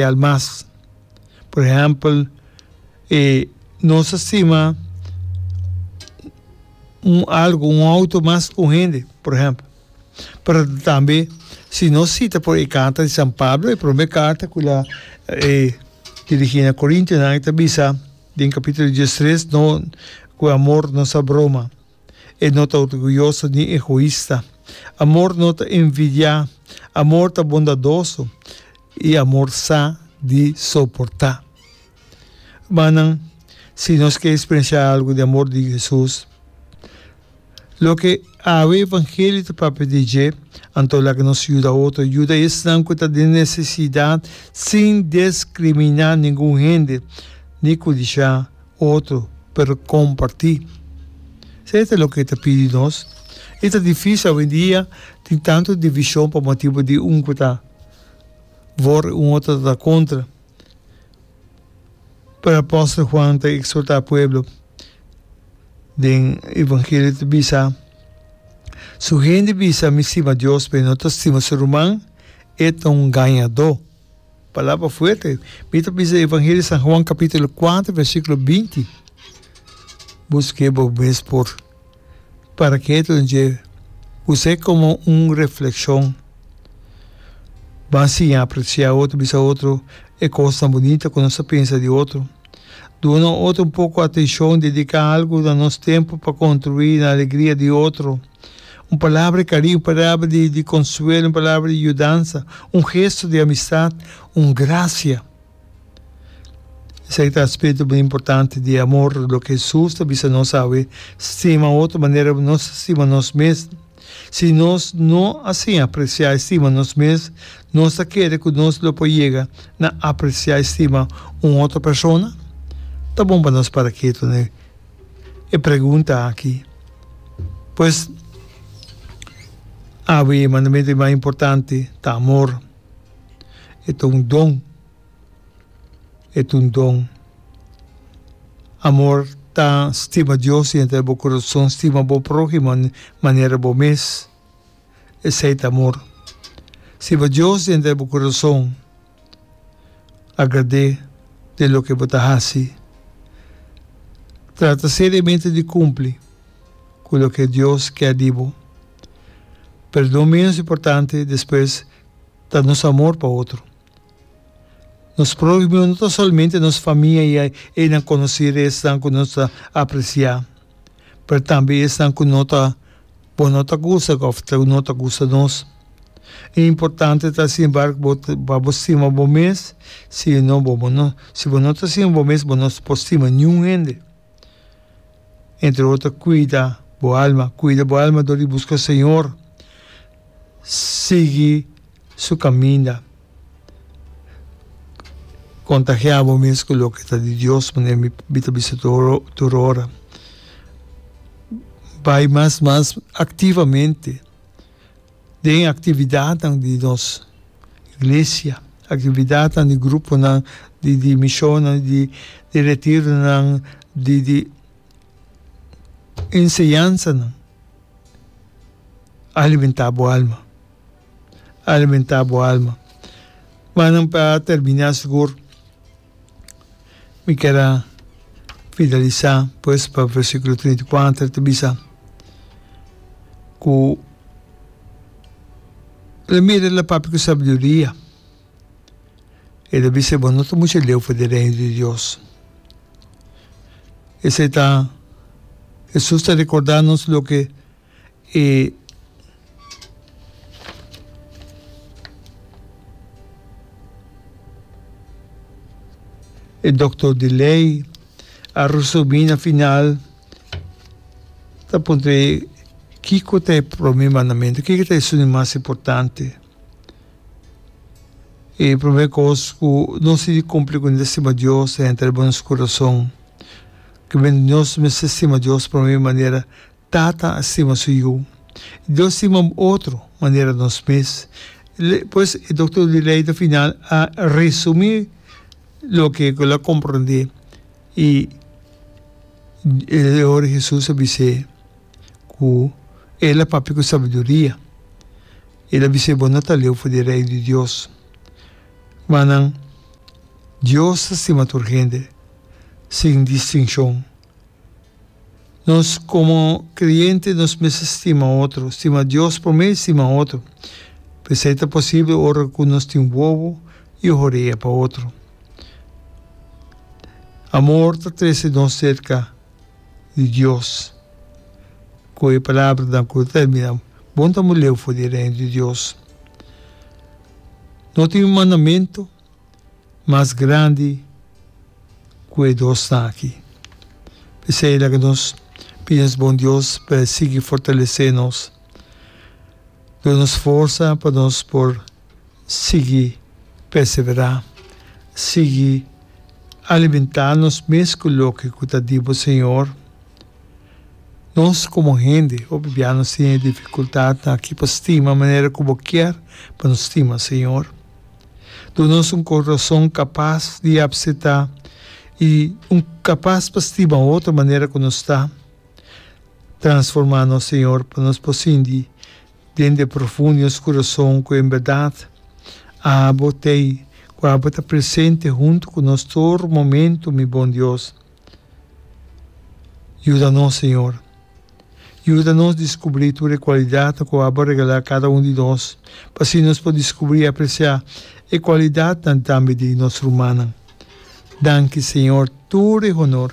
material mas. Por ehèmpel, e nos a stima un algu, un outo mas ku un hende, por ehèmpel. Pero tambe si nos sita por e karta di San Pablo, e promé karta ku el a dirigí na korintionan, el ta bisa den kapitulo dies tres, no ku e amor no sa broma. E no ta orguyoso ni egoista. Amor no ta envidiá. Amor ta bondadoso i amor sa di soportá. Rumannan, si nos ke speriensiá algu di amor di Hesus, loke awe evangelio ta papia di dje, anto laga nos yuda otro, yuda esnan ku ta den nesesidat sin deskriminá ningun hende ni kudishá. otro pero comparti. Sa e ta loke e ta pidi di nos. E ta difisil awendia, tin tantu division pa motibu di un cu ta for y un otro ta contra. Pero apostel Juan ta exhorta pueblo den evangelio ta bisa, su hende bisa mi stima Dios pero no ta stima su ruman, e ta un gañado. Palabra fuerte. Mi ta bisa Evangelio di San Juan capitulo cuatro versiculo binti, Busque bo mes por para que tur dje us'e como un refleccion. Ban siña aprecia otro, bisa otro e cosnan bunita cu nos a pensa di otro. Duna otro un poco atencion, dedica algo na nos tempo pa contribui na alegria di otro. Un palabra di cariño, un palabra di consuelo, un palabra di yudansa, un gesto di amistad, un gracia. Esaki ta aspecto bini importante di amor, loke Jesus ta bisa nos awe, Stima otro manera ku nos ta stima nos mes. Si nos no a sin aprecia i stima nos mes, nos ta kere ku nos lo por yega na aprecia i stima un otro persona? Ta bon pa nos para ketu na e e pregunta aki. Pues awe e mandamentu di mas importante ta amor. E ta un don. E ta un don. Amor ta stima Dios dentro den bo curason, stima bo prohimo manera bo mes. Esei ta amor. Stima Dios dentro den bo curason. Agradé den loke bo ta hasi. Trata seriamente di kumpli ku loke Dios kè di bo. Perdon ménos importante despues ta nos amor pa otro. Nos próhimo no ta solamente nos famia i e nan konosí resnan ku nos ta apresiá. pero tambe esnan ku no ta bo no ta kusa òf no ta kusa nos. E importante ta sin embargo bo pa bo stima bo mes, si no bo bo no si bo no ta stima bo mes bo no por stima niun hende. Entre otro kuida bo alma, kuida bo alma dor di buska Señor. sigui su caminda. Contagia bo mes cu loke ta di Dios, manera mi mi ta bisa tur tur ora. Bay mas mas activamente den e actividadnan di nos iglesia, actividadnan di gruponan, di di misionnan, di di retironan, di di enseñansanan. Alimentá bo alma, alimentá bo alma. Wak nan pa terminá sigur mi keda fidalisá pues pa versikulo trinta i kuater ta bisa ku la mira la papia ku sabiduria. E ta bisa, Bo no ta mucha leu for di Reino di Dios. Esei ta, Hesus ta rekorda nos loke e e doktor di lei a resubi na final, ta puntra e, Kiko ta e prome mandamentu? Kiko ta esun mas importante? E prome kos ku nos tin di kumpli ku mester stima Dios ta henter riba nos kurason. Kimin nos mester stima Dios prome manera tata a stima su yu. Dios stima otro manera nos mes. Pues e dokter di lei ta final a resumí loke el a komprendé i e ora Hesus a bis'é ku el a papia ku sabiduria. El a bis'é, Bo no ta leu for di Rei di Dios. Ma nan, Dios ta stima tur hende, sin distinshon. Nos komo kreyente nos mester stima otro, stima Dios promé i stima otro. P'esei ta posibel ora ku nos tin wowo i oho rea pa otro. Amor ta trese nos serka. di Dios. Ku e palabranan ku lo termina, Bon ta un leu for di Reino di Dios. No tin un mandamentu mas grandi ku e dosnan aki. P'esei laga nos pidi nos bon Dios pa e sigui fortalesé nos, duna nos forsa pa nos por. sigui perseverá, sigui alimentá nos mes ku loke ku ta di Bo, Señor. Nos komo hende hopi bia nos tin e difikultatnan aki pa stima manera ku Bo kier pa nos stima, Señor. Duna nos un koroson kapas di apseptá i un kapas pa stima otro manera ku nos ta. Transformá nos, Señor, pa nos por sinti Dende profundo di nos kurason ku en bèrdat abo t'ei ku abo ta presente huntu ku nos tur momentu, mi bon Dios. Yuda nos, Señor. Yuda nos diskubrí tur e kualidatnan ku abo a regalá kada un di nos, pa así nos por diskubrí i apresiá e kualidatnan tambe di nos rumannan. Danki, Señor, tur e honor,